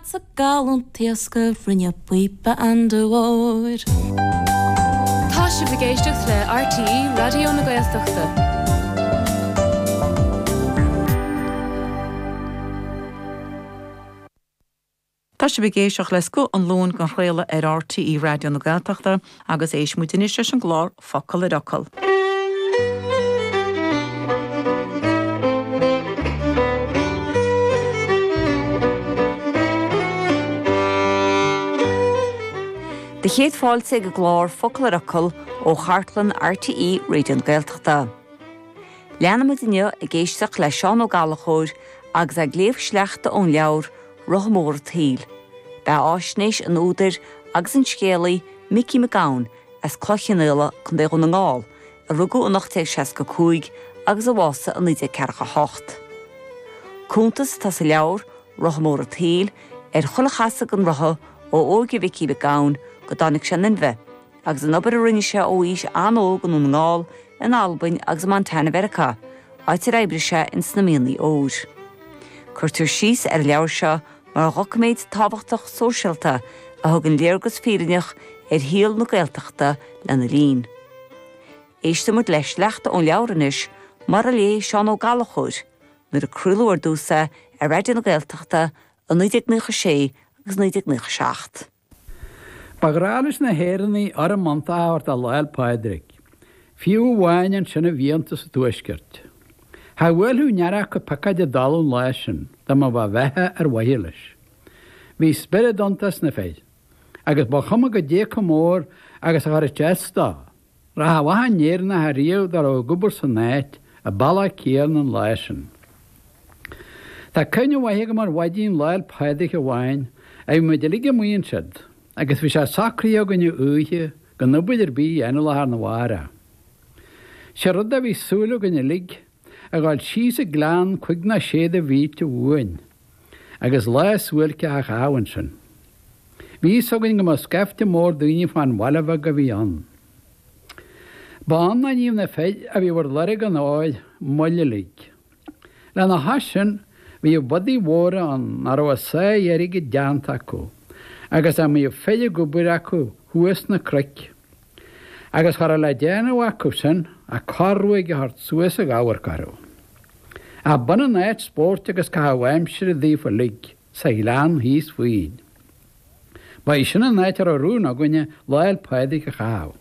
Sa gallúint taosctha rinne píopa andúir. Tá sibh ag éisteacht le RTÉ Raidió na Gaeltachta. Tá sibh ag éisteacht le Scoth an Luain den Chraoladh ar RTÉ Raidió na Gaeltachta. Agus éistfidh muid anois leis an gclár Focal ar Fhocal. Do chéad fáilte ag an gclár Focal ar Fhocal ó chartlann RTÉ Raidió na Gaeltachta. Leanfaimid inniu ag éisteacht le Seán Ó Gallchóir agus é ag léamh sleachta ón leabhar Rotha Mór an tSaoil, beathaisnéis an údair agus an scéalaí Micí Mac Gabhann as Cloich Chionnaola, Co. Dhún na nGall, a rugadh in 1865 agus a bhásaigh in 1948. Cuntas atá sa leabhar, Rotha Mór an tSaoil, ar chuile chasadh an rotha ó óige Mhicí Mac Gabhann go dtáinig sé in inmhe, agus an obair a rinne sé ó aois an-óg i nDún na nGall, in Albain agus i Montana Mheiriceá, áit ar oibrigh sé in sna mianaigh óir. Cuirtear síos ar an leabhar seo mar dhoiciméad tábhachtach sóisialta a thugann léargas fírinneach ar shaol na Gaeltachta lena linn. Éistfidh muid le sleachta ón leabhar anois, mar a léigh Seán Ó Gallchóir, nuair a craoladh ar dtús é ar Raidió na Gaeltachta i 1996 agus 1997. Ba ghnách leis na hÉireannaigh urraim iontach a thabhairt do Lá'l Pádraig. Fiú amháin ansin i bhfiántas an Tuaiscirt. Cha bhuailfeadh aon fhear acu piocóid i dtalamh an lá sin dá mba mhaith bheatha ar mhaithe leis. Bhí spiorad iontach sna fir agus ba chuma goidé chomh mór agus a chuirfeadh sé as dó. Rath mhaith an Éireannach ariamh dá raibh ag obair san áit a ba lá ciairn an lá sin. Tá cuimhne mhaith agam ar mhaidin Lá'l Pádraig amháin a bhí muid uilig amuigh ansiud agus bhí sé socraithe againn ó oíche gan obair ar bith a dhéanamh lá thar na mháireach. Sé rud é bhí súil againn uilig a dhul síos an gleann cúig nó sé de mhílte uainn, agus lá suáilceach a chaitheamh ansin. Bhí fhios againn go mbeadh scaifte mór daoine fán bhaile bheag a bhí ann. Ba ann a níodh na fir a bhíodh ar lorg an óil moill uilig. Lena chois sin, bhíodh bodaigh mhóra ann a raibh a sáith airgid déanta acu, agus a mbíodh fir ag obair acu thuas sna cnoic. agus cha raibh le déanamh acusan ach corr-ruaig a thabhairt suas ag amharc orthu. Ach b'ionann áit spóirt agus caitheamh aimsire daofa uilig sa ghleann thíos fúinn. Ba í sin an áit a raibh rún againne Lá'l Pádraig a chaitheamh.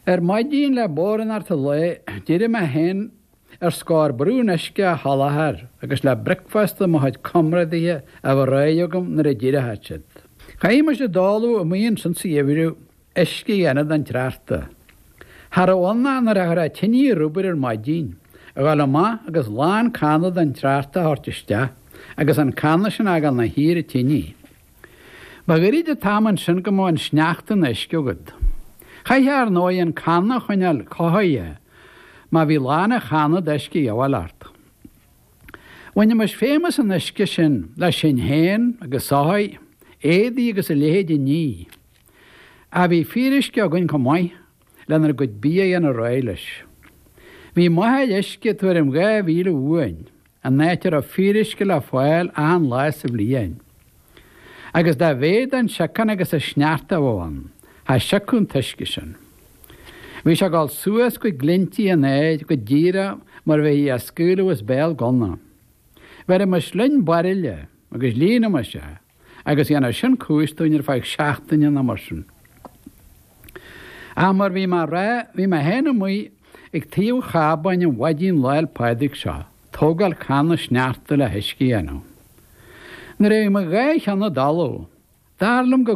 Ar maidin le bodhránacht an lae, d'éirigh mé fhéin, Ar scor ar bith in uisce a sholáthar agus le bricfeasta do mo chuid comrádaithe a bheith réidh agam nuair a d'éireochadh siad. Chaithimis i dtólamh amuigh ansin sa gheimhreadh, uisce a dhéanamh den tsneachta. Cha raibh ann ach nuair a chuirfeá tine ar obair ar maidin, a dhul amach agus lán canna den tsneachta a thabhairt isteach agus an canna sin a fhágáil ina shuí ar an tine. Ba ghairid an t-am ansin go mbeadh an sneachta ina uisce agat. Chaithfeá ar ndóigh an canna a choinneáil cothaithe má bhí lán an channa d'uisce de dhíobháil ort. Bhainimis feidhm as an uisce sin le sinn féin agus soithí, éadaí agus a leithéid a ní. Ach bhí fíoruisce againn chomh maith lenár gcuid bia a dhéanamh réidh leis. Bhí máthair uisce tuairim dhá mhíle uainn. an áit a raibh fíoruisce le fáil achan lá sa bhliain. Agus dá mhéad an siocán agus an sneachta a bheadh ann, cha siocadh an t-uisce sin. Bhí sé ag dul suas go glinntí an aeir, go díreach mar a bheifí á scaoileadh as béal gunna. Bheirimis linn bairille agus líonaimis é. agus dhéanfadh sin cúis dúinn ar feadh seachtaine nó mar sin. Ach mar bhí mé a rá, bhí mé féin amuigh ag taobh chábáin an mhaidin Lá'l Pádraig seo, tógáil canna sneachta le huisce a dhéanamh. Nuair a bhí mo dhá cheann i dtalamh, dar liom go